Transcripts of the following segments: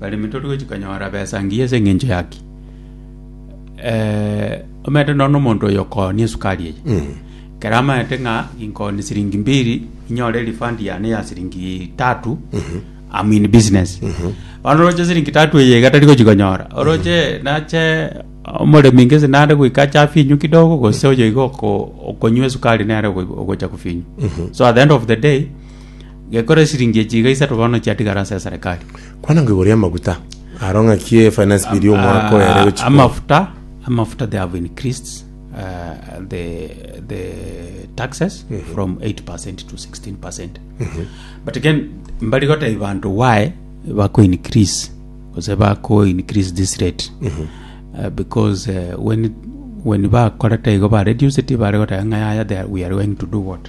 Baremi tori gochia konyora besa engiya ase engencho yaki. Omanyete nonya omonto oyo okooni esukari eye, ekero amanyete ng'a inkooni siringi mbiri inyore refund yane ya siringi tatu, am in business. Bono oroche siringi tatu eye iga tari gochia konyora, oroche nache omoremi gese nare goika ache afinywe kidogo gose oyo iga oko- okonywa esukari nere ogo- ogocha kofinywa. So at the end of the day. Gekore esiringi echi iga isato bono chiatigara ase eserekari. Kwana nko igoro y'amaguta aro ng'a ki e finance bill y'omwaka oyo ere gochia korwa. Amafuta, amafuta they have increased uh, the, the taxes from 8% to 16%. But again, mbari goteba bantu why bako increase, gose bako increase this rate. Uh, because uh, when, when bakorete igo ba reduce it, bare goteba ng'a yaya they are- we are going to do what?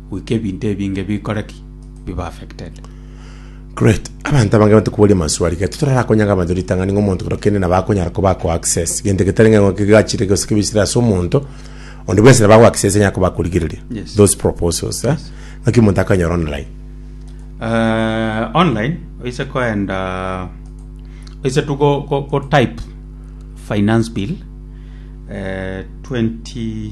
goika ebinto ebinge bikore ki? Biba affected. Great. Abanto abange bante koboria amaswali gete torara konyaga abanto ritang'ani ng'a omonto kero kende nabo akonyara koba ako access gento getari ng'a ng'oke gachire gose kebisire ase omonto onde bwensi nabo ako access anyara koba akorigereria Yes. those proposals eh? ng'aki omonto akonyora online Eh, online oise koenda oise tu go, go, go type finance bill eh, 20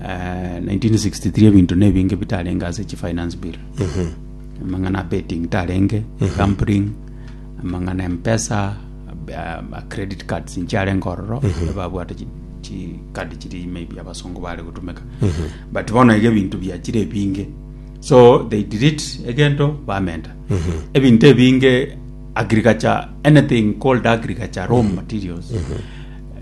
1963 ebinto nebinge bitarenge ase chi finance bill amang'ana a betting tarenge gambling amang'ana empesa a credit cards nchiarenge ororo babwate chi- chi card chiri maybe abasongo bare gotumeka but bono iga ebinto biachire ebinge so they delete egento bamenta ebinto ebinge agriculture anything called agriculture raw materials